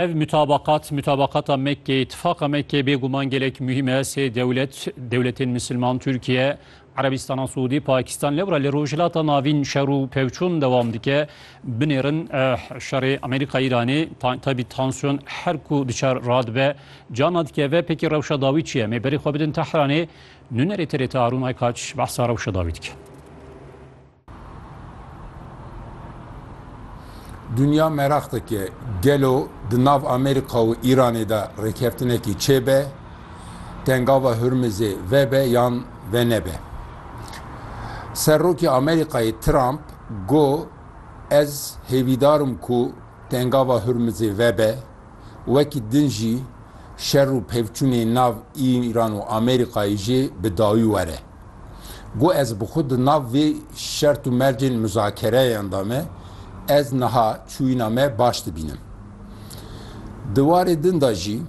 Ev mutabakat, mutabakata Mekkeyê, itifaqa Mekkeyê bêguman gelek muhîm e. Sê dewlet, dewletên misilman, Tirkiye, Erebistana Siûdî, Pakistan, lewra li Rojhilata Navîn şer û pevçûn dewam dike. Binêrin şerê Amerîka-Îranê, taybî tansiyon her ku diçe radibe, cana dikeve. Pêkî rewşa dawî çi ye? Em ê berê xwe bidin Tehranê. Nûnerê TRT Harûn Aykaç behsa rewşa dawî dike. Dinya meraq dike gelo di nav Amerîka û Îranê de rêkeftinekî çêbe, tengava Hurmizê vebe yan venebe. Serokê Amerîkayê Trump got ez hêvîdar im ku tengava Hurmizê vebe, wekî din jî şer û pevçûnên nav Îran û Amerîkayê jê bi dawî were. Got ez bi xwe di nav vê şert û mercên muzakereyan de me, ez niha çûyîna me baş dibînim. Di warê din de jî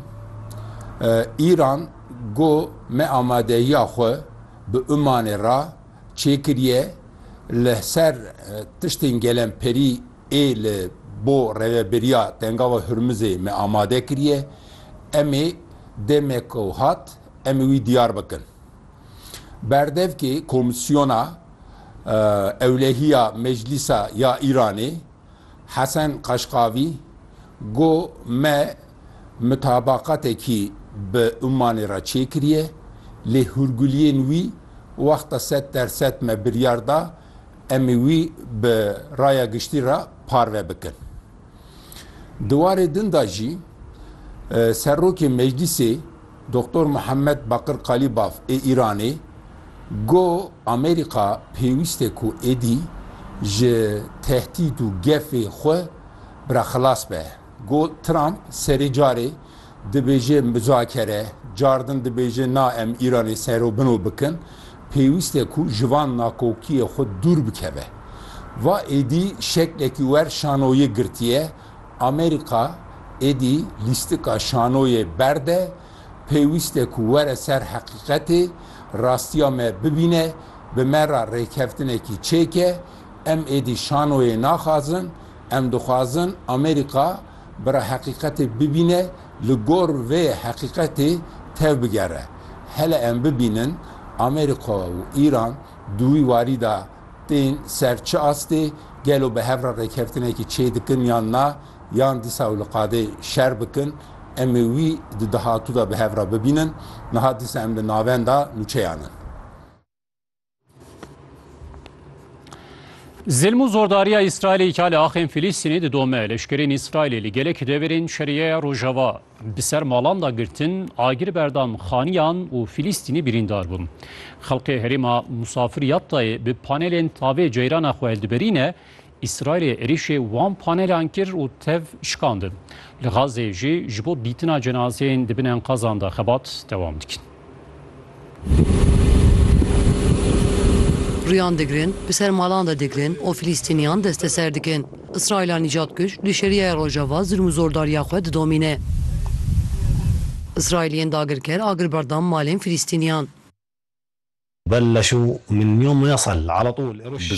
Îran got me amadehiya xwe bi Umanê re çêkiriye li ser tiştên gelemperî ê li bo reveberiya Tengava Hurmizê me amade kiriye, em ê demek ku hat em ê wî diyar bikin. Berdevkê Komîsyona Ewlehiya Meclîsa ya Îranê Hesen Kaşkavî got me mitabaqatekî bi Ummanê re çêkiriye lê hûrguliyên wî wexta sed der sed me biryar da em ê wî bi raya giştî re parve bikin. Di warê din de jî Serokê Meclîsê Doktor Muhammed Bakir Kalîbaf ê Îranê got Amerîka pêwîst e ku êdî ji tehdît û gefê xwe bi re xilas be. Got Trump serê carê Dibêje muzakere, cardin dibêje na em Îranê sero bino bikin, pêwîst e ku ji van nakokiyê xwe dûr bikeve. Va êdî şeklekî wer şanoyê girtiye, Amerîka êdî lîstika şanoyê berde, pêwîst e ku were ser heqîqetê, rastiya me bibîne, bi me re rêkeftinekî çêke, em êdî şanoyê naxwazin, em dixwazin Amerîka, Bira heqîqetê bibîne, li gor vê heqîqetê tevbigere. Hele em bibînin Amerîka û Îran di wî warî de tên ser çi astê, gelo bi hev re rêkeftinekî çê dikin yan na, yan dîsa ew li qadê şer bikin. Em ê wî di dahatû de bi hev re bibînin. Niha dîsa em li navenda nûçeyan in. Zilm û zordariya Îsraîlê îkal e axên Filîstînê didome. Leşkerên Îsraîlê li gelek deverên Şerîeya Rojava bi ser malan da girtin, agir berdan xaniyan û Filîstînî birîndar bûn. Xelkê herêma Musafir Yattayê bi panelên tavê ceyrana xwe hildiberîne, Îsraîlê êrîşê wan panelan kir û tev şikandin. Li Xazzeyê jî ji bo dîtina cenazeyên di bin enqazan de xebat dewam dikin. Riyan digirin, bi ser malan de digirin û Filîstîniyan desteser dikin. Îsraîla nîcadkuj li Şerîaya Rojava zilm û zordariya xwe didomîne. Îsraîliyên dagirker agir berdam malên Filîstîniyan. Bi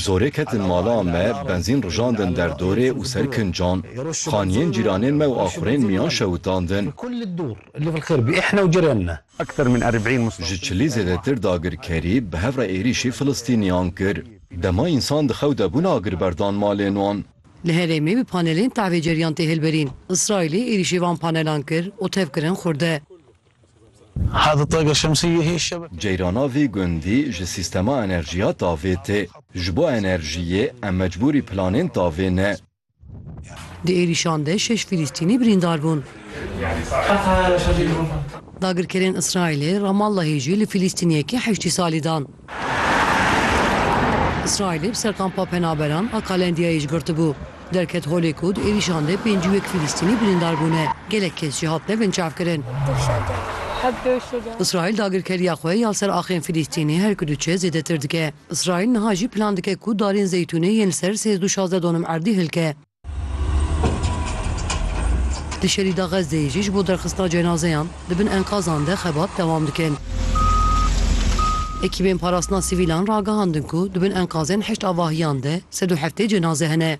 zorê ketin mala me, benzîn rijandin der dorê û ser kincan. Xaniyên cîranên me û axurên miyan şewitan din. Ji çilî zêdetir dagirkerî bi hev re êrîşî Filistîniyan kir. Dema însan di xew de bûn agir berdan malên wan. Li herêmê bi panelên tevê ceriyan tê hilberîn. Îsraîlê êrîşî van panelan kir û tevkirin xurde. Ceyrana vî gundî ji sîstema enerjiya tavê tê. Ji bo enerjiyê em mecbûrî planên tavê ne. Di êrîşan de şeş Fîlîstînî birîndar bûn. Dagirkerên Îsraîlê Ramallahê jî li Fîlîstîniyekî heştî salî dan. Îsraîlê bi ser kampa penaberan a Kalendiyayê ji girtibû. Derket holê ku di êrîşan de pêncî û yek Fîlîstînî birîndar bûne, gelek kes jî hatine binçavkirin. Îsraîl dagirkeriya xwe ya ser axên Fîlîstînê her ku diçe zêdetir dike. Îsraîl niha jî plan dike ku darên zeytûnê yên li ser sêzdû şazdeh donim erdî hilke. Di şerî de Xezzeyê jî ji bo derxistina cenazeyan di bin enkazan de xebat dewam dikin. Ekîbên parastina sivîlan ragihandin ku di bin enkazên heşt avahiyan de sed û heftê cenaze hene.